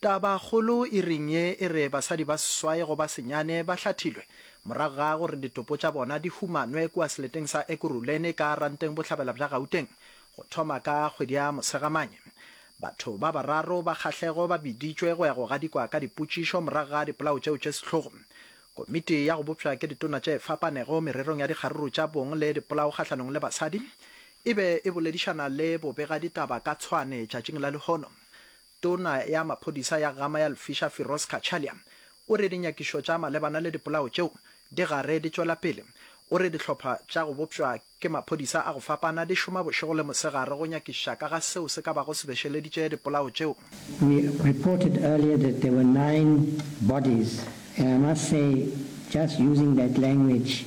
Tabakgolo e reng ye e re basadi ba seswai go ba senyane ba hlathilwe morago ga go re ditopo tša bona di humanwe kua seleteng sa Ekurhuleni ka Ranteng Bohlabela bja Gauteng go thoma ka kgwedi ya Mosegamane. Batho ba bararo ba kgahlego ba biditšwe go ya go gadikwa ka dipotšišo morago ga dipolao tšeo tše sehlogo. Komiti ya go bopšwa ke ditona tše fapanego mererong ya dikgaruru tša bong le dipolao kgahlanong le basadi e be e boledišana le bobegaditaba ka tshwane tšatšing la lehono Tona ya maphodisa ya Gama ya Lfisha Firoz Cachalia o re dinyakišo tša malebana le dipolao tšeo di gare di tšwela pele. O re dihlopha tša go bopšwa ke maphodisa a go fapana di šoma bošego le mosegare go nyakišiša ka ga seo se ka bago se bešeleditše dipolao tšeo. We reported earlier that there were nine bodies and I must say just using that language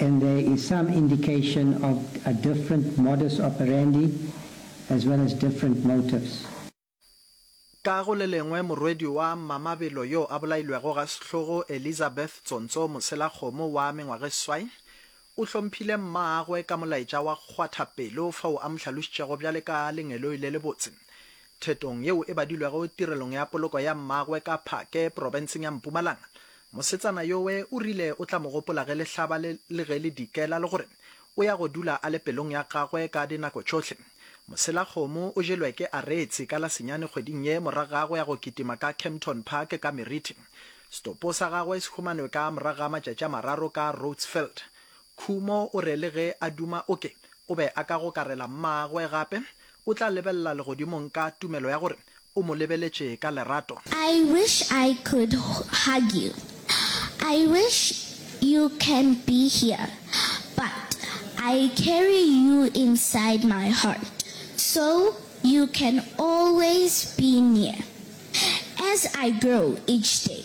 and there is some indication of a different modus operandi as well as different motives. Ka go le lengwe, morwedi wa Mamabelo yo a bolailwego ga sehlogo Elizabeth Tsontso Moselakgomo wa mengwagesway o hlomphile mmaagwe ka molaetša wa kgwatha pelo fao a mo hlalošitšego bjale ka lengeloi le lebotse Thetong yeo e badilwego tirelong ya poloko ya mmagwe ka Phake, profenseng ya Mpumalanga, mosetsana yowe o rile o tla mo gopola ge lehlaba le le ge le dikela le gore o ya go dula a le pelong ya gagwe ka dinako tšohle. Moselakgomo o jelwe ke Aretse ka la senyane kgweding ye morago ga go ya go kitima ka Kempton Park ka Merithi. Setopo sa gagwe se humanwe ka morago ga matšatši a mararo ka Roodsveld. Khumo o re le ge a duma o ke o be a ka gokarela mmagwe gape, o tla lebelela legodimong ka tumelo ya gore o mo lebeletše ka lerato. I wish I could hug you, I wish you can be here, but I carry you inside my heart so you can always be near as I grow each day.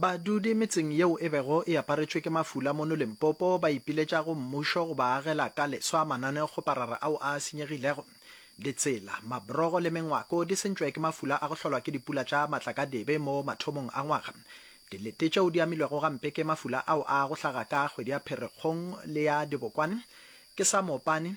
Badudi metseng yeo e bego e aparetšwe ke mafula mono Limpopo ba ipiletša go mmušo go ba agela ka leswa mananeokgoparara ao a senyegilego. Ditsela, mabrogo le mengwako di sentšwe ke mafula a go hlolwa ke dipula tša matlakadibe mo mathomong a ngwaga. Dilete tšeo di amilwego gampe ke mafula ao a go hlaga ka kgwedi ya Pherekgong le ya dibokwane ke sa moopane,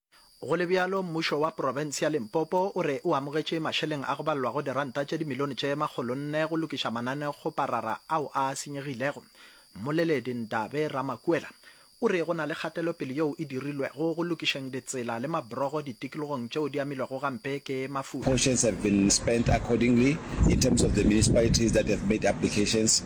Go le bjalo, mmušo wa profense ya Limpopo o re o amogetše mašeleng a go balelwago diranta tše dimilione tše makgolo nne go lokiša mananekgoparara ao a senyegilego. Mmoleledi Ndabe Ramakuela o re go na le kgatelopele yeo e dirilwego go lokišeng ditsela le mabrogo ditikologong tšeo di amilwego gampe ke mafula. Portions have been spent accordingly in terms of the municipalities that have made applications